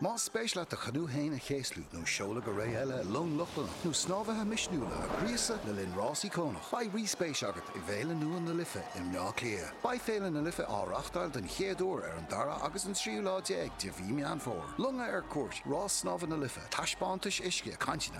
Más spéis leat do chanú féin a chéaslú nó seoladh go ré eile i long Lochlannach nó snámhaithe misniúla a ghríosadh le linn rás íocónach, beidh rí-spéis agat i bhFéile nua na Life i mBleá Cliath. Beidh Féile na Life á reáchtáil den chéad uair ar an dara agus an tríú lá déag de mhí Meán Fómhair. Longa ar cuairt, rás snámha na Life, taispeántais uisce, cainteanna.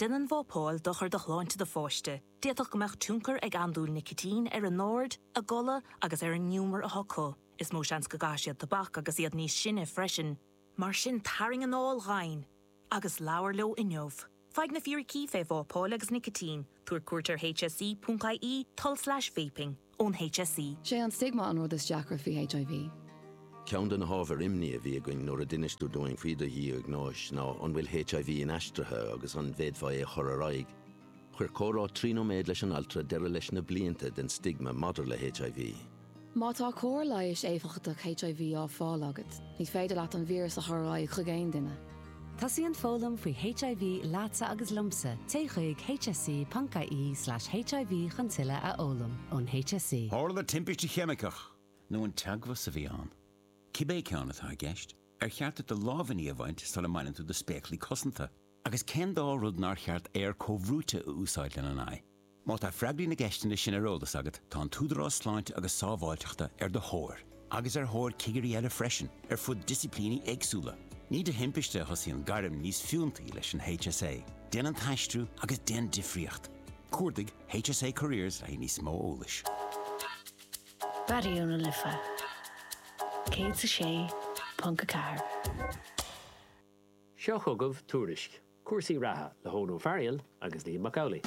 Déanann vápáil dochar do shláinte do pháiste, d'fhéadfadh go mbeadh tionchar ag andúil nicitín ar a n-aird, a gcodladh agus ar an ngiúmar atá acu. Is mó seans go gcaitheadh siad tobac agus iad níos sine freisin. Mar sin tarraing anáil dhomhain agus labhair leo inniu. Faigh na fíricí faoi vápáil agus nicitín, Tabhair cuairt ar hse.ie, tulslais vaping. Ón hse. Sé an stigma an rud is deacra faoi HIV. Ceann de na hábhair imní a bhí againn nuair a d'inis tú dúinn faoi do dhiagnóis ná an bhfuil HIV inaistrithe agus an bhféadfá é a chur ar aghaidh. Chuir comhrá trí nóiméad leis an altra deireadh leis na blianta den stigma maidir le HIV. Má tá cóir leighis éifeachtach HIV á fáil agat, ní féidir leat an víreas a chur ar aghaidh chuig aon duine. Tosaíonn foghlaim faoi HIV leatsa agus liomsa, téigh chuig hse.ie/hiv chun tuilleadh a fhoghlaim ón HSE. Tharla timpiste cheimiceach, nó an teagmhas a bhí ann, cibé ceann atá i gceist, ar cheart duit do lámhainní a bhaint sula mbaineann tú do spéaclaí cosanta. Agus cén dá rud nár cheart aer comhbhrúite a úsáid lena n-aghaidh? Má tá freagraí na gceisteanna sin ar eolas agat, tá an tÚdarás Sláinte agus Sábháilteachta ar do thóir, agus ar thóir cigirí eile freisin, ar fud disciplíní éagsúla. Ní de thimpiste a thosaíonn gairm níos fiúntaí leis an HSA, déan an t-aistriú agus déan difríocht! Cuardaigh HSA Careers le haghaidh níos mó eolais. Raidió na Life 106.4. Seo chugaibh tuairisc cúrsaí reatha le hEoghan Ó Fearghail agus Liam Mac Amhlaigh.